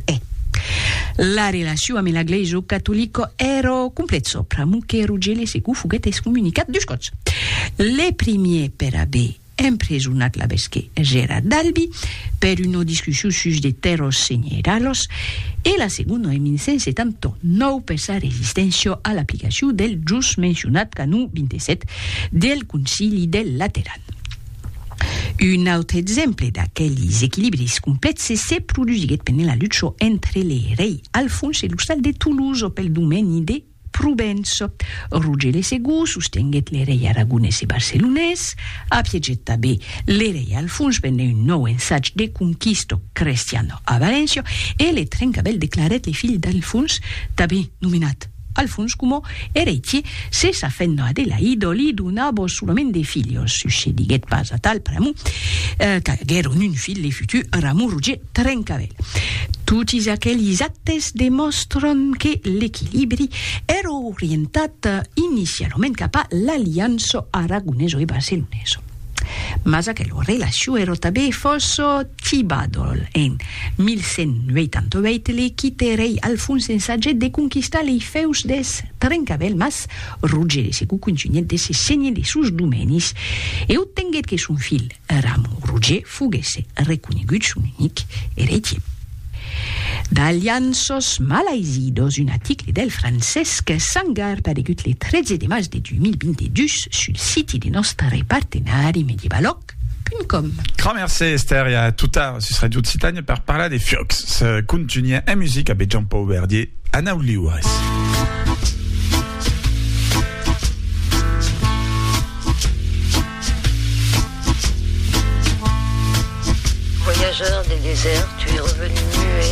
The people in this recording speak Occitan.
Eh. La relaciu ame la gleisio catolico ero complet sopra, mo que Rugele secu foguet excommunicat dus còps. Le primier per aver empresonat l'abesque Gerard d'Albi per uno discussiu sus de terros senieralhos e la segono en 1179 per sa resistentio a l'aplicaciu del jus mencionat canon 27 del Concili del Lateran. Un autre exemple d'aquelis equilibris complèxes se produsiguèt pendent la lucha entre le rei Alfons e l'ostal de Toulouse pel domeni de Provença. Roger le Segur sostenguèt le rei aragonés e barcelonés, apiegèt tanben le rei Alfons pendent un nòu ensatge de conquista crestiana a Valéncia e le Trencavèl declarèt le filh d'Alfons tanben nomenat Al fons, coma eretie, se sa fent Adelaido li donabos solament de filhos, sucediguèt pas atal pr'amor qu'aguèron un filh le futur Ramon Roger Trencavèl. Totis aquelis actes demòstran que l'equilibri èra orientat inicialament cap a l'aliança aragonesa e barcelonesa. Mas aquela relacion èra tanben fòrça Tibadol en 1188 li quite rei Alfons ensagèt de conquistar lei fèus deth Trencavèl mas Roger de Segou contunhèt de se senhir de sos domenis e obtenguèt que son filh Ramon Roger foguesse reconegut son unic eretier. D'Alianços malaizidos, un aticle del Francesc Sangar paregut le 13 de març de 2022 sul siti de nòstre partenari Medievalòc. Www.radiofutura.com Gramercé Esther e a tota sus Radio Occitània per parlar de fiocs. Se contunha en musica be Jean Paul Verdier, Anau liures. Voyageur des déserts, tu es revenu muet.